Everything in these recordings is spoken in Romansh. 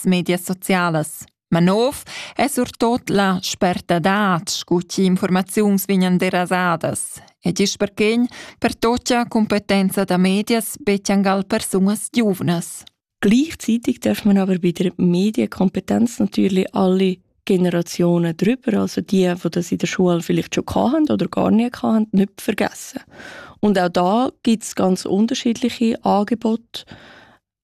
medias socialas. Ma nov è surtot la spertadad scu chi informaziuns vignan derasadas ed isch perchegn pertotia competenza da medias betjangal persunas giuvnas. Gleichzeitig darf man aber bei der Medienkompetenz natürlich alle Generationen drüber, also die, die das in der Schule vielleicht schon hatten oder gar nie hatten, nicht vergessen. Und auch da gibt es ganz unterschiedliche Angebote,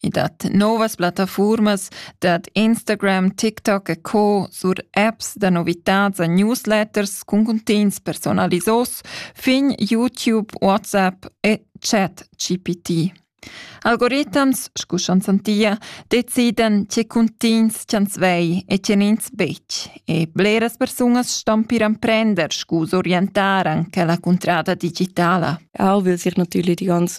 I dat novas plattafurmas dad Instagram, TikTok e co sur apps da novitads a newsletters cun cuntegns personalisos fin YouTube, WhatsApp e chat GPT. Algoritams, scu schon santia, deciden tge cuntegns ch'ans vei e tgen ins betg. E bleras persunas stampiran prender scu orientar anche la cuntrada digitala. Auch weil sich natürlich die ganze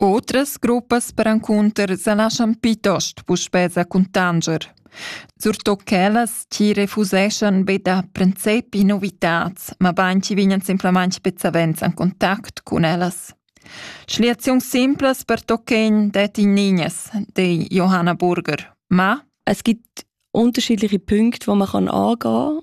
Otras gruppas perencunter sa laschan plitost puspè sa cuntanscher. Surtut quellas chi refuseschan be da princepi novitats, ma bain chi vignan simplamaing be savens in contact cun ellas. Schliaziuns simplas per tochen det in Niñas, de Johanna Burger. Ma es gibt unterschiedliche Punkte, wo man kann angehen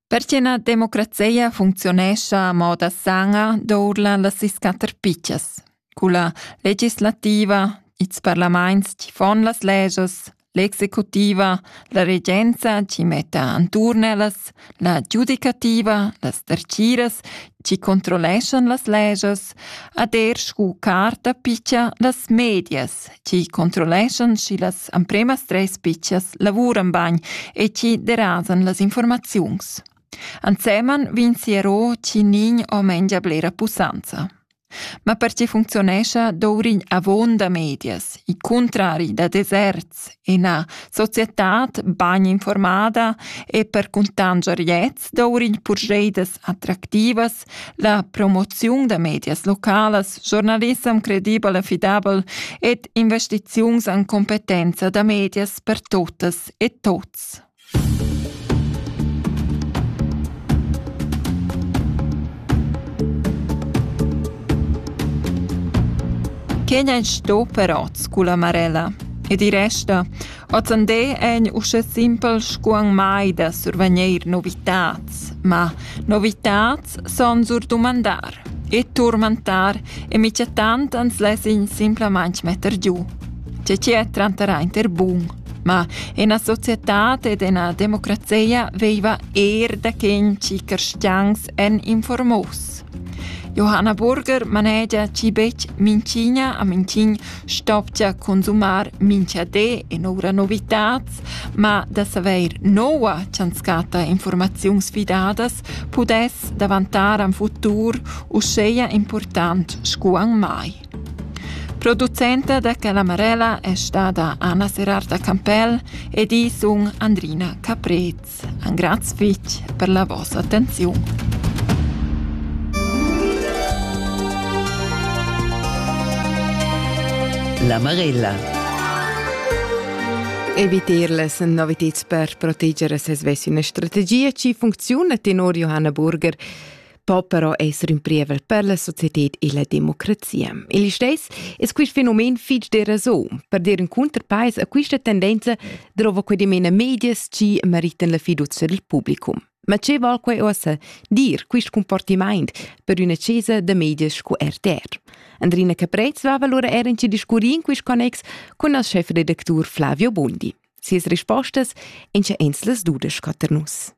Perche na democrazia funcziunescha a moda sana dourla las sis quatter pitschas, culla legislativa, ils parlaments chi fon las legias, l'executiva, la regenza chi metta anturn ellas, la giudicativa, las derciras chi controlleschan las legias, ad er scu carta picha las medias chi controlleschan schi las ampremas tres pitschas lavuran bagn e chi derasan las informaziuns. Anseman vin siero chi nin o mengia blera pussanza. Ma per ci funzionescia dourin avon da medias, i contrari da deserts e na societat bagn informada e per cuntangier jets dourin purgeidas attractivas La promoziun da medias localas, giornalissem credibel e fidabel ed investiziuns en competenza da medias per tuttas e tuts. Kenya è sto però, sculla Marella. E di resta, Ozande egn uschè simpel scu anc mai da survagneir novitats, ma novitats son sur dumandar e turmentar e michatant ans less'ign simplamaing metter giù. Che chi è tranter aint er bun, ma ena societad ed ena democrazeia veiva eir da quen chi carstians èn informos. Johanna Burger manegia chi betg minchigna a minchign Stopcha consumar mincha di in'oura novitats, ma da savair noua cha'ns chatta infuormaziuns fidadas pudess davantar ün futur uschea important scu ün mai. Producenta da Calamarella è stada Anna Serarta Campell ed i sun Andrina Caprez. Engrazi fetg per la vossa attenziun. La Marella. Evitarle sind noviteds per proteger ses ves üna strategia chi funcziuna tenor Johanna Burger. po però esser ün prievel per la societed e la democrazia. Il steis es quist fenomen fich de rason. Per dir ün cunterpais a quista tendenza drova que dimena medias chi meritan la fiducia del publicum. Ma che val quai ossa dir quist comportimaint per üna chesa da medias scu RTR? Andrina Caprez va allora er in ci discurri in quist connex con il chefredactur Flavio Bondi. Sias rispostas en ce ens las dudes scotter nus.